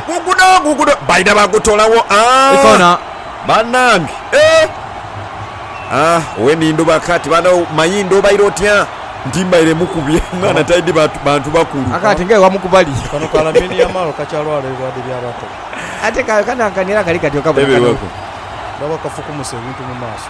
Guguno guguno baidha bagutolawo Ikona. banange eeh Weni ndhuba kati bano mayindo obaire otya nti mbaire mukubye mwana taidhi bantu bakulu. Aka ati nga ewamu kubali. Kano ka Lamine Yamal kakyalwala ebilwadhe bya bato. Ate kano akanira kali kati okabona kano. Ebiwako. Ndaba kafukumuse ebintu mu maaso.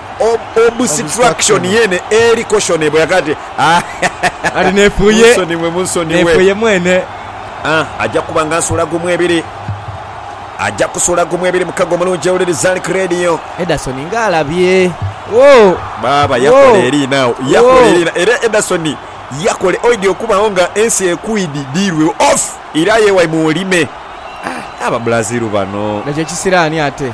obusitrakishoni yeene eri koshonebwa yaka ati, Kati nefuuye, Munsonighe, munsonighe. nefuuye mwene. Aja kuba nga nsula gumu ebiri. Aja kusula gumu ebiri mukago omulungi ewuliri Zalc Radio. Ederson nga alabye. Woo! Baaba yakola Woo! eri now. Yakola Woo! eri na. Era Ederson yakola oidhi okubagho nga ensi ekwidhi dhiirwe off ira aye wai mu olime. Aba Brazil bano. Nga kye kisiraani ate.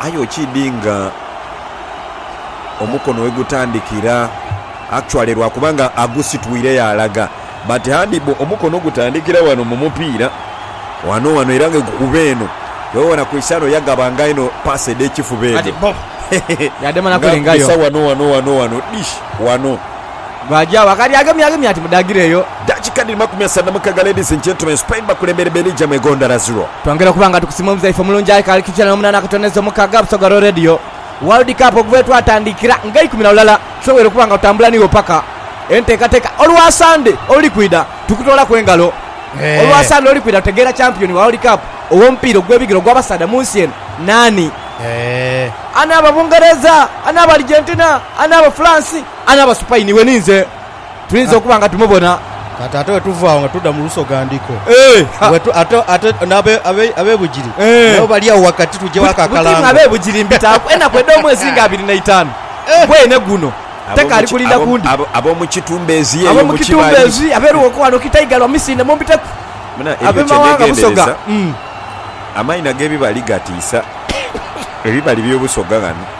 Aye okiidhi nga omukono wegutandikira actually lwakuba nga agusitwire yaalaga but handball omukono gutandikira ghano mu mupiira ghano ghano era nga egukuba eno. Bwewabona Cristiano yagaba nga inho pass edh'ekifuba edho nga adhisa ghano ghano ghano ghano dish ghano. Baaja agho akali agemyagemye ati, Mudaagireyo. Dakika dhiri makumi asatu na mukaga Ladies and gentlemen, Spain bakulembere Belgium egondhara ziro. Twongera okuba nga tukusiima omuzaife omulungi aye kaali kikya na omunana akatono ezo mukaga Busoga Raw Radio World Cup okuva wetwatandikira nga eikumi na lulala tusobweire okuba nga tutambula niwo paka entekateka olwa Sande oluli kwidha tukutoolaku engalo olwa Sande oluli kwidha tutegeera champion wa World Cup owomupiira ogwebigere ogwa basaadha munsi eno naani. Ani aba Bungereza? Ani aba Argentina? Ani aba France? Ani aba Supaini? Iwe ni nze tuyinza okuba nga tumubona. Kati ate bwe tuva agho nga tuda mu lusogandhiko, ate ab'ebugiri nabo bali agho ghagati, tugye wa kakalango? Buti mmwe ab'ebugiri mbitaaku enaku edh'omwezi nga abiri na itaanu gweene guno, tekaali kulinda ku ndi. Ab'omu kitumbezi eyo mu kibali. Abeeruwoko ghano kita igalo amisinde mumbiteku. Ab'emawanga Busoga. Amaina g'ebibali gatiisa. Ebibali by'e Busoga ghano.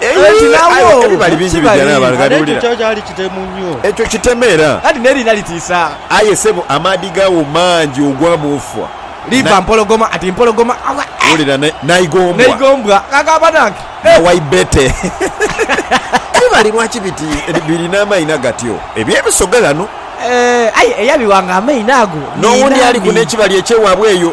Eyi, aye ebibali bingi bigya n'abo abagaliwulira. Ekyo kiteme era. Aye sebo, amaadhi gaawo mangi ogwa bwofwa. Wulira n'eigombwa. Na waibete. Ebibali lwaki biti biri n'amaino agatyo? Eby'ebisoga ghano. N'owundi aliku n'ekibali eky'ewaabwe eyo.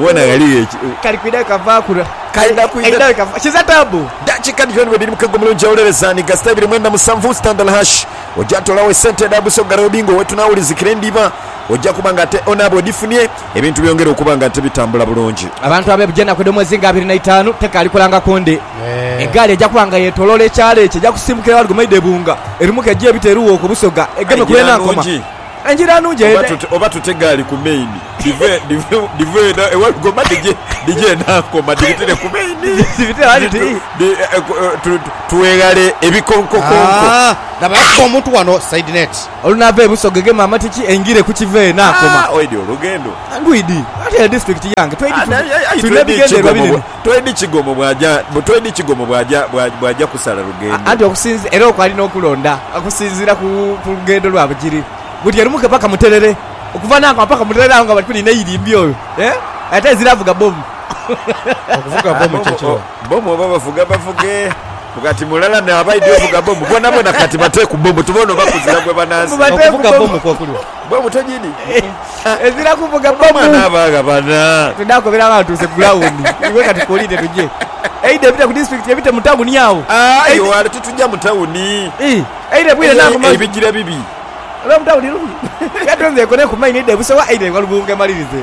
Wona ghaligho eki. Kali kwidha kava kula. Kaidha kwidha. Kiza taabu. Dakika dhyooni bwedhiri mukego mulungi awolereza ni gasita ibiri mwenda musanvu standard hash oja tolawo esente edha busoga robi nga owetunawulizikira endhiba oja kuba nga ate onaaba odhifunie ebintu byongere okuba nga ate bitambula bulungi. Abantu abebja enaku edhomwezi nga abiri naitaanu tekaali kulangaku ndi. Egaali eja kuba nga yetoloola ekyalo ekyo eja kusimbukira ewali Gomaidha ebunga erimuku eje ebita eruwooku busoga egeme kuba enaakoma. Engira nungi eyo ne. Oba tute egaali ku main dhive eno ewalugoma dhije enankoma dhibitire ku main tweghale ebikonkokonko. Laba yakuba omuntu wano side net. Olunava e Busoga egema amatiki engire ku kiva enankoma. Oidhi olugendo. Ndwidhi. Ate district yange twidhi tulina ebigendererwa binene. Toidi kigomo bw'aja, toidi kigomo bw'aja, bw'aja kusala lugendo. Anti okusinzi, era okwo alina okulonda okusinziira ku, ku lugendo lwa bugiri. Buti erumuke paka Muterere, okuva n'agho nga paka Muterere agho nga bali kuliina eirimbi oyo, eh? Ate ezira avuga bomu. Okuvuga Ah, bomu kye bomu, ki? oh, bomu oba bavuga bavuge, kati mulala naaba aidhi ovuga bomu, bonabona kati bate ku bomu tubone oba kuzira gwe banansi. Mubate ku Okuvuga bomu. bomu kwo kulya. Bwe butyo Gidi ezira kuvuga mama. Twidha kobera agho aghantuuse ku ground. Iwe kati kuliire tuje. Eidha ebite ku disitulikiti ebite mu tawuni agho. Aye wale titugya mu tawuni. Eidha ebwire na ku mazi. Ebigira bibi. Olw'omu tawuni lubi. Kati nze nkoneku maino eidha e Busowa eidha e Walubunga emalirize.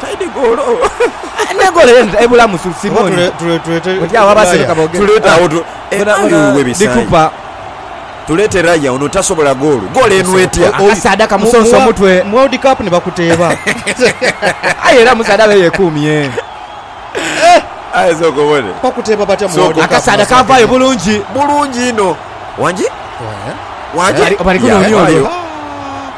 Taidi goolo. Ne goolo ye ebulamu su Simoni. Oti agho abaseroka boogera. Dhikupa. Tuleete Raya ono tasobola goolo. Goolo eno etya? Akasaadha kamusonsa omutwe. Mu World Cup ni bakuteeba. Aye era omusaadha abe yekuumye. Aye sooka obone. Bakuteeba batya mu World Cup? Akasaadha kaavaayo bulungi. Bulungi inho. Wangi? Wangi? Bali kunoonia olwo.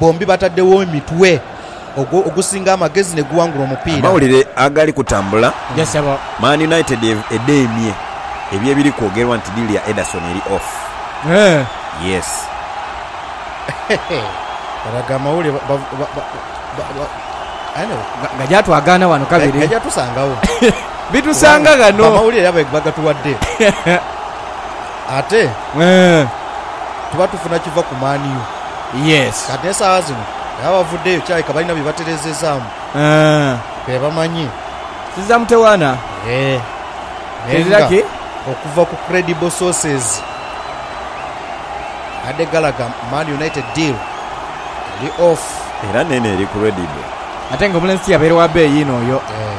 Bombi batadhegho emitwe ogwo ogusinga amagezi ne guwangula omupiira. Amawulire agali kutambula, Man United edheemye ebyo ebiri kwogerwa nti diili ya Ederson eri off. Yes. Kale ago amawulire ba, ba, ba, ba, ba, anyway. Nga, nga gyatwagaana wano kabiri. Ga, gajatusangagho. Bitusanga ghano. Amawulire era bagatuwadde. Ate tuba tufuna kiva ku Man U. Kati n'esaawa zino era bavuddeyo kyaleka balina bye batereezezaamu be bamanye. Sisi za mutewaana. Eeh. Naye Tezira nga ki? okuva ku credible sources abadde galaga Man United deal eri off. Era neeno eri credible. Ate nga omulenzi tiyabeere wa beeyi inho oyo. Eeh.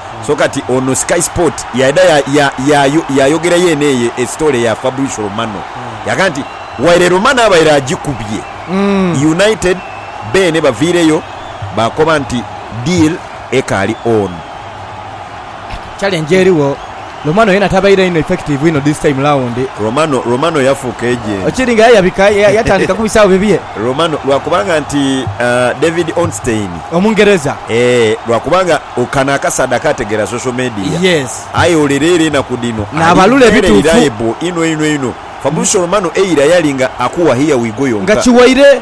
So kati ono Sky Sport yaidha yaayogera yeene eyo esitoole ya Fabrizio Romano. Yaaga nti, Waire Romano abaire agikubye, United beene baviireyo baakoba nti deal ekaali on. Challenge erigho. Romano yena tabaire inho effective inho this time round. Romano, Romano yafuuka agent. Kiri nga yayabika, yatandika kubisaawo bibye. Romano, lwakubanga nti David Ornstein. Omungereza. Eeh, lwakubanga kano akasaadhaka ategeera social media. Yes. Aye olere era enaku dhino Naabalula ali very ebituufu. reliable inho einho einho. Fabrizio Romano eira yalinga akuwa here we go Nga yonka. kiwaire.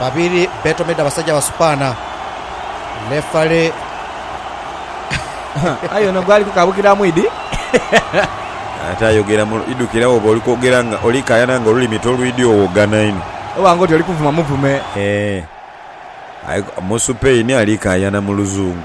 Babiri betomedde abasaja basupana. Lefare. Aye ono gwali kukabukira mwidi. Ate ayogera mu idukira woba oli kwogera nga oli kayana nga olulimi tolwidi owogana inho. Oba nga oti oli kuvuma muvume. Eeh. Aye musupain ali kayana mu luzungu.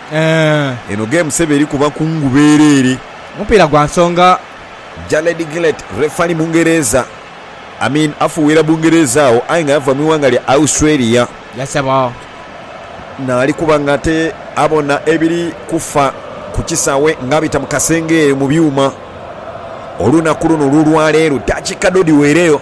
Eno game sebo eri kuba kungu bereere. Omupiira gwa nsonga. Jared Gillett, refali Mungereza. Amin afuuwira Bungereza agho aye nga yava mu ighanga lya Australia. Ye sebo. Naali kuba nga ate abona ebiri kufa ku kisawe nga abita mu kasenge eyo mu byuma. Olunaku luno olw'olwaleero dakiika dho dhiweereyo.